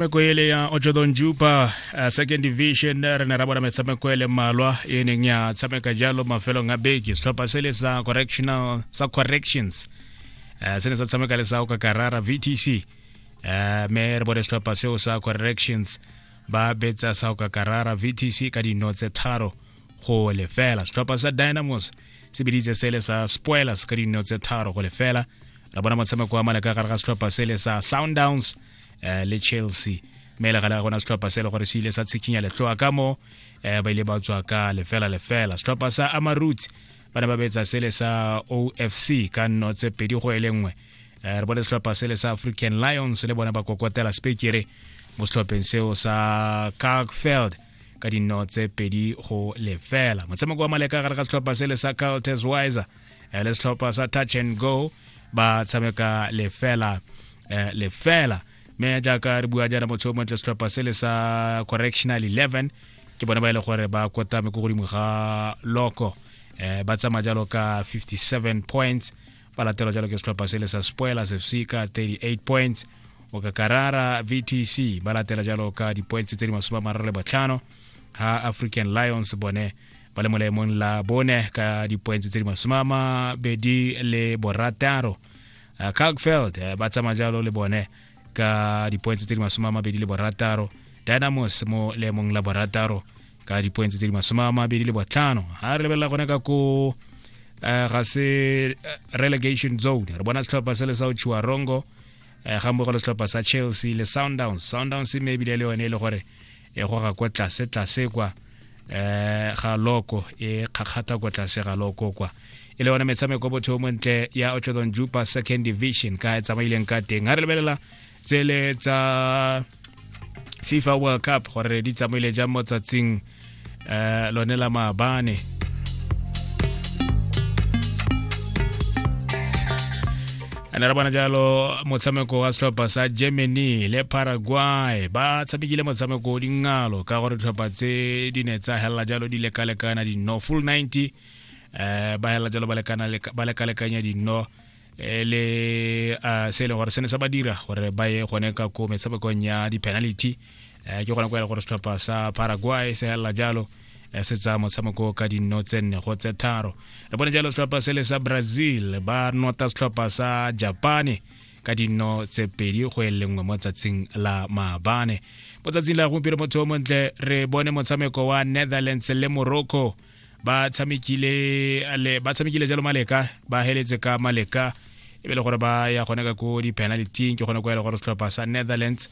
metshameko ele ya ochodon jupa uh, second division re ne ra bona metshameko ele mmalwa e neng ya tshameka jalo mafelong a beke setlhopha se le sa correctional sa corrections uh, se ne sa tshameka le sa okakarara vtc uh, me re bone setlhopha seo sa corrections ba betsa sa okakarara vtc ka dino tse tharo go lefela setlhopha sa dynamos se biditse sele sa spoilers ka dino tse tharo go lefela ra bona motshameko wa maleka gare ga setlhopha sele sa soundowns uh, le chelsea mme le gale ga gona setlhopha se e le gore se ile sa tshikinya letloa ka mo um ba ile ba tswa ka lefela lefela setlhopha sa amarut ba ne ba betsa sele sa ofc ka nno tse pedi go e le nngwe um re bone setlhopha sele sa african lions le bone ba kokotela spekere mo setlhopheng seo sa cargfeld ka dinno tse pedi go lefela motshameko wa maleka gare ga setlhopha sele sa carltes wiser eh, le setlhopha sa touch and go ba tshameka lefela eh, lefela mme jaaka re bua jaana motho o montle setlhopha se le sa correctional 11 ke bone ba e le gore ba kotame ko godimo ga loko eh, ba tsamaya jalo ka 57 points ba latelwa jalo ke setlhopha se le sa spoilers fc ka 38 points o ka karara vtc ba latela jalo ka di-points tse di masome a mararo le botlhano ha african lions bone ba le mo laemong la bone ka dipoentse tse di masome a mabedi le borataro uh, calgfeld uh, ba tsamaya jalo le bone ka dipoentse tse di masome a mabedi le borataro dynamos mo laemong la borataro ka dipoentse tse di masome a mabedi le botlhano ga re lebelela gone ka ko uh, ga se uh, relegation zone re bona setlhopha se le sa otshiwa rongo uh, ga mmogo le setlhopha sa chelsea le sundowns sundowns mme ebile le yone e le gore e goga kwa tlase tlase kwa eh ga loko e kgakgata kwa tlase ga loko kwa e le yone metshameko botho mo ntle ya otlodon jupa second division ka e tsamaileng ka teng ga re lebelela tsele tsa fifa world cup gore di tsamaile jang mo tsatsing eh lone la maabane ene re bona jalo motshameko wa setlhopha sa germany le paraguay ba tshamekile motshameko o dingalo ka gore ditlhopha tse di ne tsa helela jalo di lekalekana dino full 90 um ba helela jalo ba lekalekanya dino Eh, le uh, se e leng gore se ne sa ba dira gore ba ye gone ka ko metshamekong ya di-penalty uh, ke gona ko ele gore setlhopha sa paraguay se helela jalo eh, se tsa motshameko ka dinno tse nne go tse tharo re bone jalo setlhopha se le sa brazil ba nota setlhopha sa japane ka dinno tse pedi go e lengwe mo tsatsing la maabane mo tsatsing la gompieno motho o montle re bone motshameko wa netherlands le morocco ba tshamekile le ba tshamekile jalo maleka ba heletse ka maleka e be le gore ba ya gone ka ko di-penaltyng ke gone ko ya le gore setlhopha sa netherlands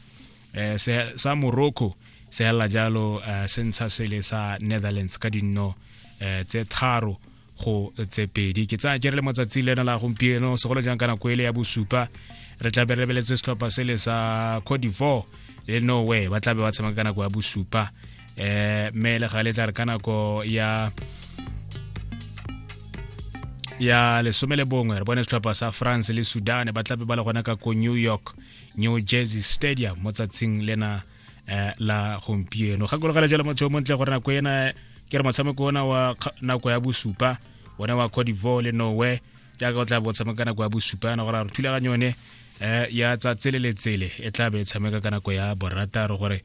eh, sa morocco se hela jalo eh, se ntsha sele sa netherlands ka dinno eh, tse tharo go tse pedi ke tsaya ke re le motsatsi lena la gompieno segolo jang ka nako ele ya bosupa re tla be re lebeletse setlhopha sele sa cote d'ivoire le norway ba tla be ba tshameka ka nako ya bosupa eh me le ga le tla ka nako ya ya lesome le bongwe re bone setlhopha sa france le sudan ba tlabe ba le gona ka ko new york new jersey stadium mo tsatsing lena eh, la gompieno gakologela jalo motho yo montle gore nako ena ke re motshameko ona wa nako ya bosupa one wa cote divoir le norway jaaka o tla bo tshameka nako ya bosupa yana gore a re thulaganyo yone eh, ya tsatse le letsele e tla be e tshameka ka nako ya borataro gore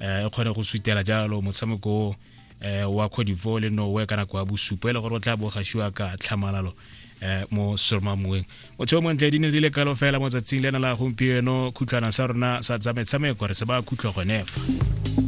eh, e kgone go sutela jalo motshameko eh, wa codivore le nowe ka nako ya bosupo e le gore o tla bogasiwa ka tlhamalalo eh, mo sormamueng motho o montle di ne di le kalo fela mo tsatsing le na la gompieno khutlhwana sa rona sa tsa metshameko re se ba khutlho gonefa